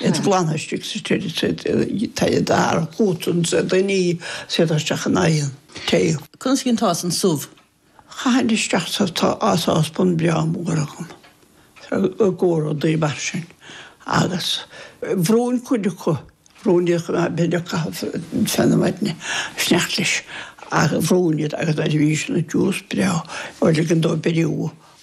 Iad a ghlanadh istigh sa tseid, sa tae dar chútan, sa dainí, séideadh isteach in aghaidh an tae. Conas a dheinteása an subh? Chaithinn isteach sa sáspan breá mór agam i gcomhair rudaí mar sin agus bhrúinn cuid acu, bhrúinn iad chomh maith, b'fhéidir caitheamh fein na maidne, in éineacht leis, ach bhrúinn iad agus nuair a bhí sin ag tiús breá, bhuel liginn dó beiriú.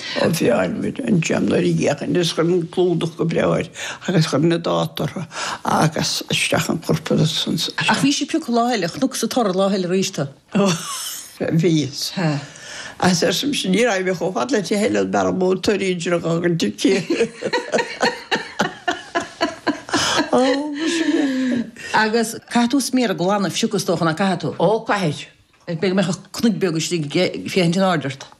Fearmid an t-sean nuair a gheachain agus chuirinn clúdach go breá air agus chuir na dáta ortha agus isteach an corp agus. Ach bhís ag piocadh lá eile, chonacsa tor lá eile arís tú. Ó, bhíos. Agus ar sin ní raibh mé chomh fada leat a thuilleadh mar an mó toirí a d'fhreagair an tigh. Agus caithfidh tú sméara a ghlanadh fiuchadh is dócha, ná caithfidh tú? Ó, caithfidh. Beidh mé ag cur cnuimh bheag istigh féachaint in airde ort.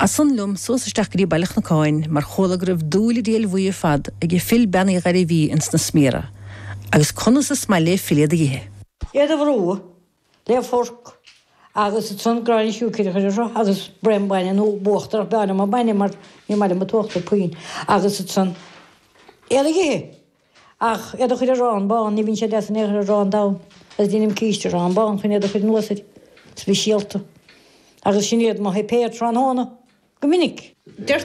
As san liom suas isteach go dtí Baile an Chnocáin mar chuala go raibh dúil an diabhail bhuí ar fad age Phil Bean Uí Ghairbhí ins na sméara agus conas is maith le Phil iad a ithe. iad a bhrú le forc agus as san gráinne siúicre a chur ortha agus braon bainne nó uachtar ach b'fhearr liom an bainne mar ní maith liom an t-uachtar puinn agus as san iad a ithe. Ach iad a chur ar arán bán, ní bhíonn siad deas in aon chor ar arán donn, agus deinim císte arán bán chun iad a chur anuas air, speisialta. Agus sin iad mo shuipéar tráthnóna, go minic.